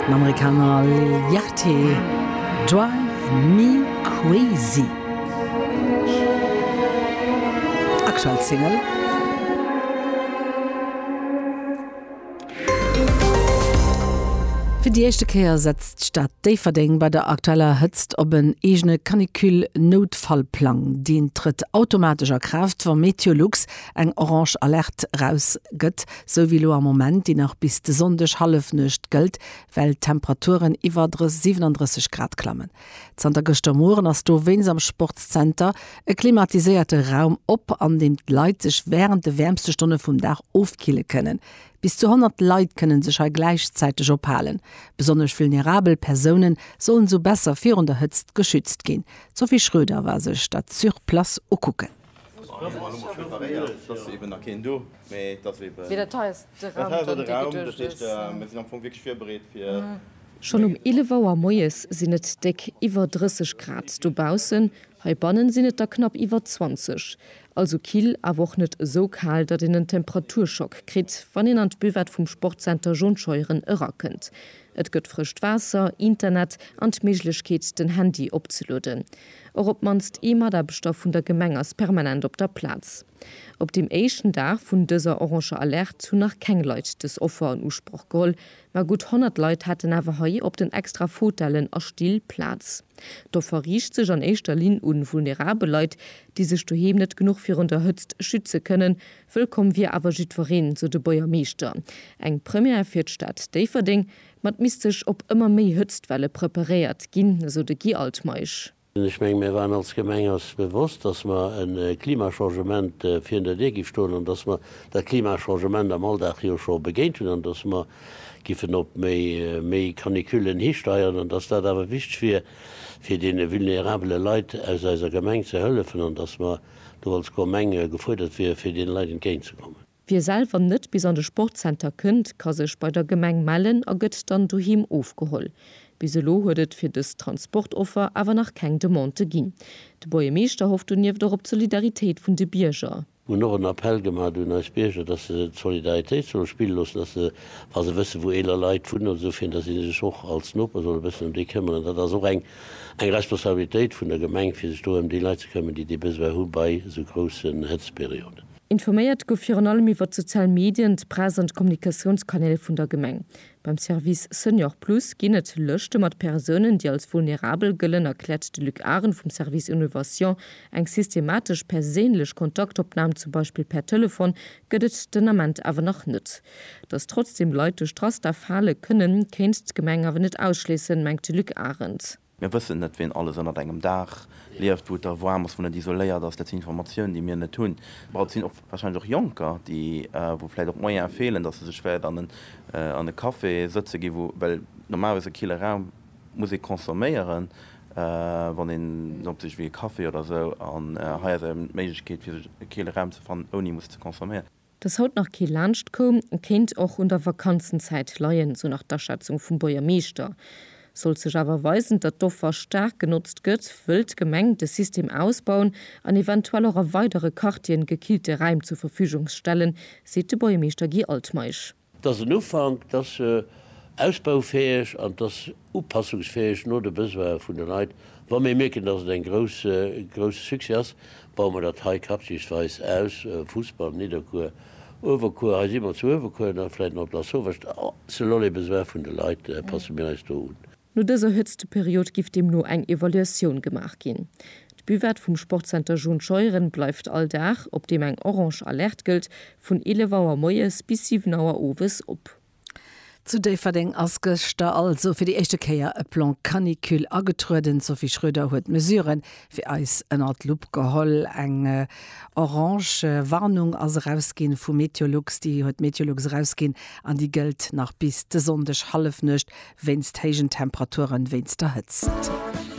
Den Amerikaner Lil Yachty, Drive Me Crazy. Aktuell Single. Fir déi éischte Kéier setzt d'Stad Déifferdeng bei der aktueller Hëtzt op en eegene Canicule-Noutfallplang. Deen trëtt automatesch a Kraaft, wa MeteoLux eng orange Alerte erausgëtt. Sou wéi lo am Moment, déi nach bis de Sonndeg Hallefnuecht gëllt, well d'Temperaturen iwwer 37 Grad klammen. Zanter gëschter Mueren ass do wéinst am Sportszenter e klimatiséierte Raum op, an deem d'Leit sech wärend de wäermste Stonne vum Dag ofkille kënnen. Bis zu 100 Leit kënne sech hei gläichzäiteg ophalen. Besonnesch vulnerabel Persoune sollen sou besser virun der Hëtzt geschützt ginn. D'Sophie Schröder war sech dat sur place ukucken. Schonn um 11 Auer moies sinn et déck iwwer 30 Grad dobaussen, heibanne sinn et der knapp iwwer 20. Also kill, awer och net esou kal, datt een en Temperaturschock kritt, wann een an d'Buvette vum Sportzenter John Scheuren erakënnt. Et gëtt frëscht Waasser, Internet an d'Méiglechkeet, den Handy opzelueden. Och op d'mannst ee Mataarbechter vun der Gemeng ass permanent op der Plaz. Op deem éischten Dag vun dëser oranger Alerte hunn nach keng Leit dës Offer an Usproch geholl, ma gutt 100 Leit haten awer hei op den extra Fotellen a Still Plaz. D'Offer riicht sech an éischter Linn un vulnerabel Leit, déi sech doheem net genuch virun der Hëtzt schütze kënnen. Wëllkomm wier awer jiddwereen, sou de Buergermeeschter. Eng Première fir d'Stad Déifferdeng, Mä et misst sech op ëmmer méi Hëtztwelle preparéiert ginn, esou de Guy Altmeisch. Ech menge mir waren als Gemeng eis bewosst, datt mer e Klimachangement virun der Dir gi stoen an datt mer dat Klimachangement am Alldag jo scho begéint hunn an datt mer giffen op méi Canicullen histeieren an datt dat awer wichteg wier fir deene vulnerabele Leit aus eiser Gemeng ze hëllefen an datt mer do als Gemeng gefuerdert wieren fir deene Leit entgéint ze kommen. Wie selwer net bis an de Sportzenter kënnt, ka sech bei der Gemeng mellen a gëtt dann doheem ofgeholl. Bis elo huet et fir dës Transportoffer awer nach keng Demandë ginn. De Buergermeeschter hofft donieft och op d'Solidaritéit vun de Bierger. Mir hunn och en Appell gemat un eis Bierger, dass se d'Solidaritéit solle spille loossen, dass se, wa se wësse wou eeler Leit wunnen oder esou, fir dass si sech och als Noper solle bëssen ëm déi këmmeren. Dat ass och eng Responsabilitéit vun der Gemeng, fir sech do ëm déi Leit ze këmmen, déi dee Besoin hu bei esou groussen Hëtztperioden. Informéiert gouf virun allem iwwer d'sozial Medien, d'Press an d'Kommunikatiounskanäl vun der Gemeng. Beim Service Senior Plus ginn et Lëschte mat Persounen, déi als vulnerabel gëllen, erkläert de Luc Arendt vum Service Innovation. Eng systematesch perséinlech Kontaktopnam, zum Beispill per Telefon, gëtt et den Ament awer nach net. Datt trotzdeem Leit duerch d'Raster fale kënnen, kéint d'Gemeng awer net ausschléissen, mengt de Luc Arendt. Mir wëssen net, wien alles ënnert engem Daach lieft, wou et da waarm ass, wou net isoléiert ass. Dat sinn Informatioun, déi mir net hunn. Mä et sinn och wahrscheinlech och Jonker, déi, wou vläicht och d'Moyene feelen, dass se sech wäert an en, an e Café sëtze ginn, wou, well normalerweis e kille Raum muss ee consomméieren, wann een en opsicht wéi e Café oder esou. An hei ass eben d'Méiglechkeet, fir sech e kille Raum ze fannen, ouni musse ze consomméieren. Dass haut nach kee laanscht koum, kéint och un der Vakanzenzäit leien, sou nach d'Aschätzung vum Buergermeeschter. Sollt sech awer weisen, datt d'Offer staark genotzt gëtt, wëll d'Gemeng de System ausbauen an eventuell och a weidere Quartieren gekillte Räim zur Verfügung stellen, seet de Buergermeeschter Guy Altmeisch. Et ass en Ufank, et ass ausbaufäeg an et ass upassungsfäeg no de Besoine vun de Leit. Wa mir mierken, dass et e grousse Succès ass, baue mir dat hei quartiersweis aus, Fussball, Nidderkuer, Uewerkuer, hei si mer zu Uewerkuer, da vläicht nach op Lasauvage, selon les besoins vun de Leit passe mir eis do un. No dëser Hëtzteperiod giff deemno eng Evaluatioun gemaach ginn. D'Buvette vum Sportzenter John Scheuren bleift all Dag, op deem eng orange Alerte gëllt, vun 11 Auer moies bis 7 Auer owes op. Zu Déifferdeng ass gëschter also fir déi éischte Kéier e Plan Canicule agetrueden. D'Sophie Schröder huet d'Mesuren Fir eis ënnert d'Lupp geholl. Eng orange Warnung ass erausginn vu Meteolux, déi huet Meteolux erausginn an déi gëllt nach bis de Sonndeg Hallefnuecht wéinst héijen Temperaturen, wéinst der Hëtzt.